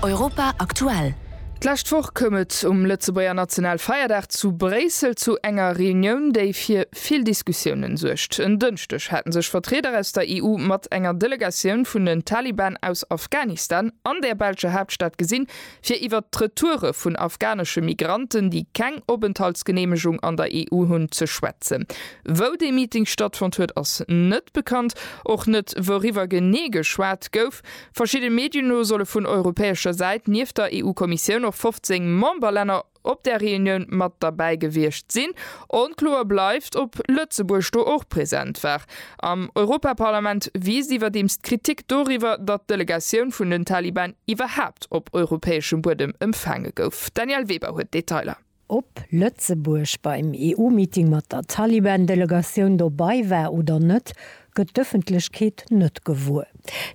Europa aktuell. D'lescht Woch koum et um Lëtzebuerger Nationalfeierdag zu Bréissel zu enger Reunioun, déi fir vill Diskussiounen suergt. En Dënschdeg hate sech Vertrieder aus der EU mat enger Delegatioun vun den Taliban aus Afghanistan an der belscher Haaptstad gesinn, fir iwwert d'Retoure vun afghanesche Migranten, déi keng Openthaltsgeneemegung an der EU hunn, ze schwätzen. Wou dee Meeting stattfonnt huet, ass net bekannt, och net wouriwwer genee geschwat gouf. Verschidde Medien no solle vun europäescher Säit nieft der EU-Kommissioun och 15 Memberlänner, op där Reunioun mat derbäi gewiescht sinn. Onkloer bleift, ob Lëtzebuerg do och present war. Am Europaparlament wiisst iwwerdeems d'Kritik doriwwer, datt d'Delegatioun vun den Taliban iwwerhaapt op europäeschem Buedem empfaange gouf. D'Danièle Weber huet d'Detailer. Ob Lëtzebuerg beim EU-Meeting mat der Taliban-Delegatioun dobei war oder net, gëtt d'Ëffentlechkeet net gewuer.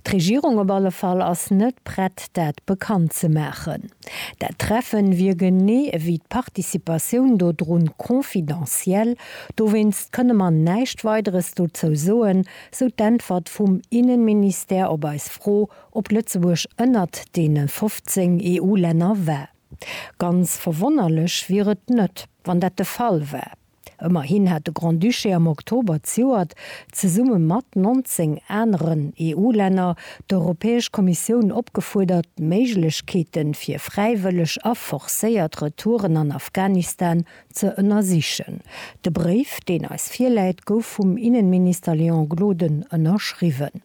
D'Regierung op alle Fall ass net prett dat bekannt ze maachen. Dat Treffen wier genee ewéi d'Participatioun dodrun confidentiel, dowéinst kënne mer näischt Weideres dozou soen, sou d'Äntwert vum Innenministère op eis Fro, ob Lëtzebuerg ënnert deene 15 EU-Länner war. Ganz verwonnerlech wier et net, wann dat de Fall war. Ëmmerhin hat de Grand-Duché am Oktober ziouert, zesumme mat 19 aneren EU-Länner, d'Europäesch Kommissioun opgefuerdert, d'Méiglechkeete fir fräiwëlleg a forcéiert Retouren an Afghanistan ze ënnersichen. De Bréif, deen eis virläit, gouf vum Innenminister Léon Gloden ënnerschriwwen.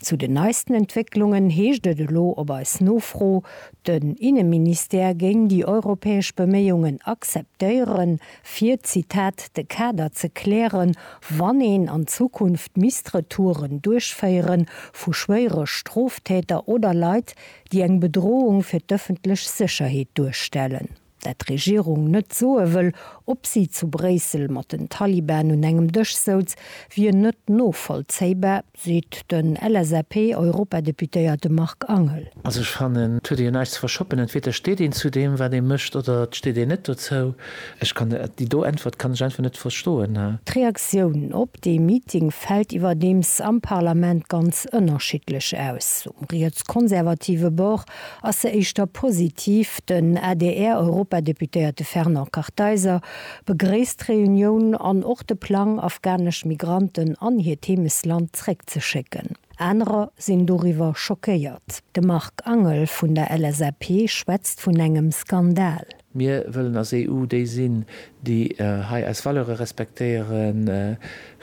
Zu den neisten Entwécklungen heescht et elo op eis Nofro, den Inneministère géing déi europäesch Beméiungen akzeptéieren, fir, Zitat, de Kader ze klären, wann een an Zukunft misst Retouren duerchféiere vu schwéiere Stroftäter oder Leit, déi eng Bedrohung fir d'ëffentlech Sécherheet duerstellen. dat d'Regierung net soe wëll, ob si zu Bréissel mat den Taliban un engem Dësch souz, wier net novollzéibar, seet den LSAP-Europadeputéierte Marc Angel. Also ech fannen, et huet ee jo näischt ze verschoppen. Entweder steet een zu deem, wat ee mécht, oder et steet een net dozou. Ech kann déi do Äntwert kann ech einfach net verstoen. D'Reaktioun op dee Meeting fält iwwerdeems am Parlament ganz ënnerschiddlech aus. Um rietskonservative Bord ass se éischter positiv. Den ADR-Europadeputéierte Fernand Kartheiser begréisst d'Reunioun an och de Plang, afghanesch Migranten an hiert Heemesland zréckzeschécken. Anerer sinn doriwwer schockéiert. De Marc Angel vun der LSAP schwätzt vun engem Skandal. Mir wëllen als EU déi sinn, déi hei eis Valeure respektéieren,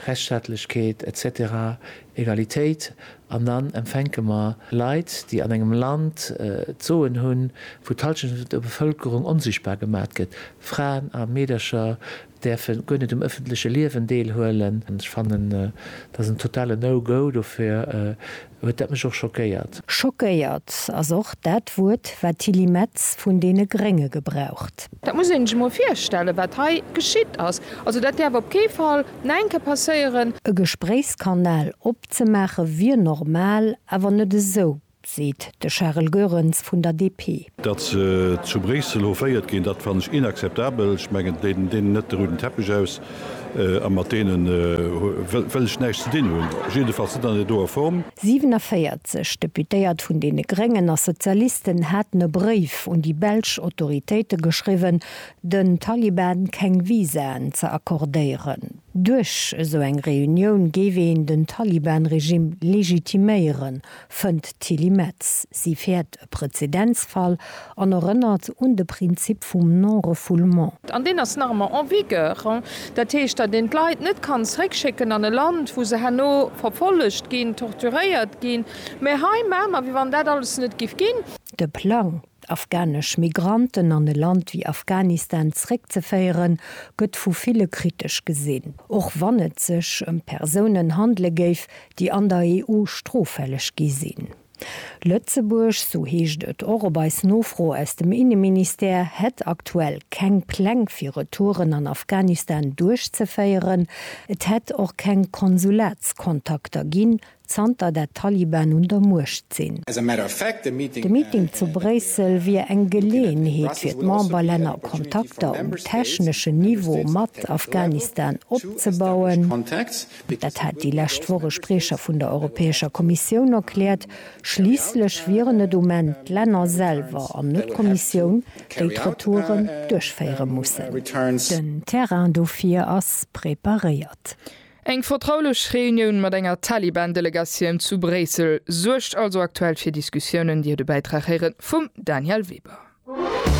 Rechtsstaatlechkeet, etc. Egalitéit. An dann empfänke mer Leit, déi an engem Land d'Soen hunn, wou d'Hallschent vun der Bevëlkerung onsichtbar gemat gëtt, Fraen a Meedercher, däerfe guer net um ëffentleche Liewen deelhuelen. Ech fannen, dat ass en totale No-Go. Dofir huet dat mech och schockéiert. Schockéiert ass och dat Wuert, wat d'Tilly Metz vun deene Grénge gebraucht. Dat muss een sech emol virstellen, wat hei geschitt ass. Also, dat däerf op kee Fall no eng Kéier passéieren. E Gespréichskanal opzemaache wier normal, awer net esou. seet de Charel Goerens vun der DP. Datt se zu Bréissel hoféiert ginn, dat fannen ech inakzeptabel. Ech mengen, deenen deenen net de rouden Teppech aus a mat deenen wëll ech näischt ze dinn hunn, jiddefalls net an der doer Form. 47 Deputéiert vun deene Gréngen a Sozialisten haten e Bréif un déi belsch Autoritéite geschriwwen, den Taliban keng Visaen ze accordéieren. Duerch esou eng Reunioun géif een den Taliban-Regime legitiméieren, fënnt d'Tilly Metz. Si fäert e Prezedenzfall an erënnert un de Prinzip vum Non-refoulement. An deen ass nach ëmmer en vigueur. Dat heescht, datt een d'Leit net kann zeréckschécken an e Land, wou se herno verfollegt ginn, torturéiert ginn. Mä hei maache mer, wéi wann dat alles net géif ginn. De Plang, d'afghanesch Migranten an e Land wéi Afghanistan zréckzeféieren, gëtt vu ville kritesch gesinn, och wann et sech ëm Persounen handele géif, déi an der EU stroffälleg gi sinn. Lëtzebuerg, sou heescht et och op eis Nofro aus dem Inneministère, hätt aktuell keng Pläng fir Retouren an Afghanistan duerchzeféieren. Et hätt och keng Konsulatskontakter ginn, Zanter dat d'Taliban un der Muecht sinn. De Meeting zu Bréissel wier eng Geleeënheet fir d'Memberlänner Kontakter um techneschen Niveau mat Afghanistan opzebauen. Dat hat déi lescht Woch e Spriecher vun der Europäescher Kommissioun erkläert. Schliisslech wieren et um Enn d'Länner selwer an net d'Kommissioun, déi d'Retouren duerchféiere mussen. Den Terrain dofir ass preparéiert. Eng vertraulech Reunioun mat enger Taliban-Delegatioun zu Bréissel suergt also aktuell fir Diskussiounen, Dir hutt e Bäitrag héiere vum Danièle Weber.